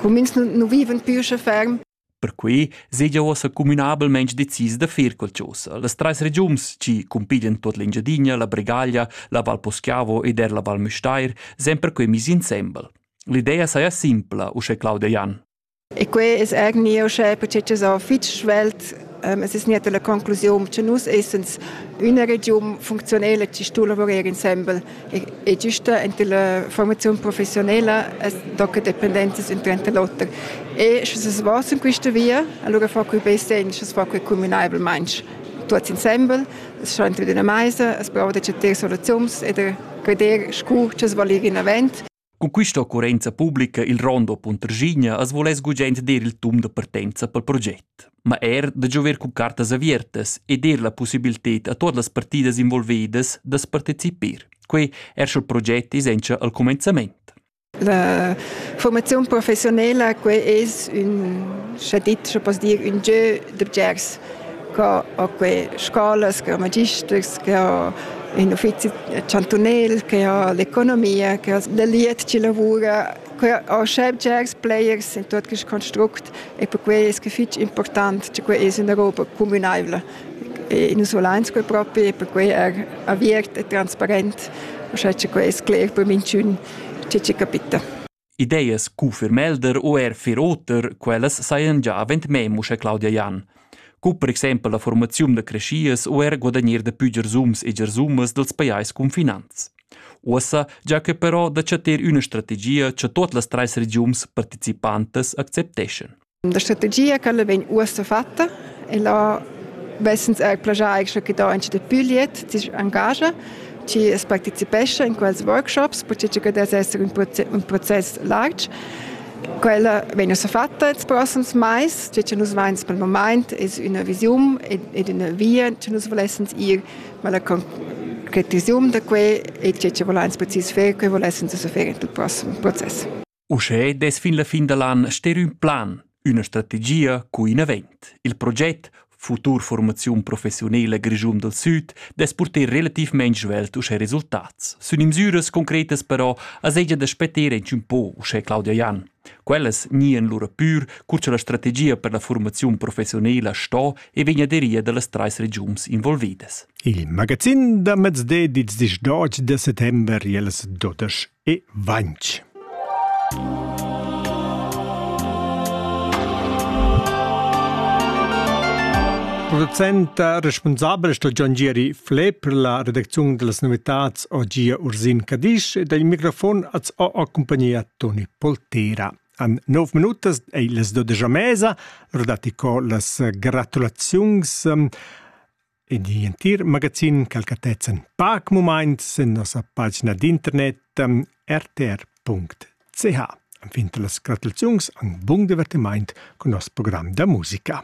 cumins nu vivan più sche ferm. Perquei segia uossa cumünabelmaing decis da fer quel chosa. Las trais regiuns chi cumpiglian tuot l'Engiadina, la Bregaglia, la Val Poschiavo ed er la Val Müstair sen perquei mis insembel. L'idea saja simpla, uschè Claudia Jan. E quei es eigentlich uschè perché so fitg svelt Ähm, es es nicht la conclusión che nus essens una region funktionelle ci stu lavorare insembel e giusta enter la formazione professionale da che dependenze sind trenta lotter e sche es was in questa via allora fa quei be sen sche fa quei communabel manch tuts insembel es schon wieder eine meise es braucht der soluzions e der credere scu che es valir in avant Cun quista occurrenza publica il Rondo Puntraschigna as voless gugent dir il tum da partenza pel proget, ma eir da giover cun cartas avertas e dir la pussibilted a tuot las partidas involvedas da's partecipir. Quei er sch'el proget isencha al cumenzament. La formazione professionale, quella es un, schon dit, schon poss dir, un jeu da bgers che ho que scolas, che ho magisters, che ho ün uffizi chantunel, che ho l'economia, che ho da liet chi lavura, que ho subjects, players, in tuot quist construct e perquai es que fich important cha que es üna roba cumünaivla. E nus volains que propi e perquai er aviert e transparent, uschè cha que es cler per minchün chi ci capita. Ideas cu Firmelder u er fir oter, quellas sajan gia avant mem uschè Claudia Jan. Cu per exempel la formaziun da creschias u er guadagnir da pü giarsums e giarsumas dals pajais cunfinants. Uossa già che però da chattar üna strategia cha tuot las trais regiums participantas accepteschan. La strategia quella vegn uossa fatta e là vessens eir plagià eir che da anche da Puliet chi engagia chi es partecipescha in quels workshops perché che das esser un process larg. Quella vegn ussa fatta ils prossems mais, cioè che nus vains pel moment es üna visiun ed üna via che nus volessens ir, ma la concretiziun da que e che che volans precis fer, que volessens ussa fer in il prossem process. Uschè dess fin la fin da l'an ster ün plan, üna strategia cu in avent. Il proget futur formaziun professiunela Grischun dal Süd dess purter relativmaing svelt uschè resultats. Sun imsüras concretas però as hegia da spetter inch ün po uschè Claudia Jan. Quellas gnien lura pür cur cha la strategia per la formaziun professiunela sto e vegna aderia da las trais regiuns involvidas. Il magazin da mezde dits disch 12 de settember jeles dotesch e vainch. Producenta responsabla sto Gian Gieri Fle per la redacziun delle novitats oggi Ursin Cadisch e dal microfon az ho accompagnia Toni Poltera. An 9 minutas è les do de mesa, rodati co las gratulaziuns um, ed igl entir magazin calcatezzan pac mumaints en nossa pagina d'internet ehm, rtr.ch. Anfin las gratulaziuns an bung divertimaint cun nos program da musica.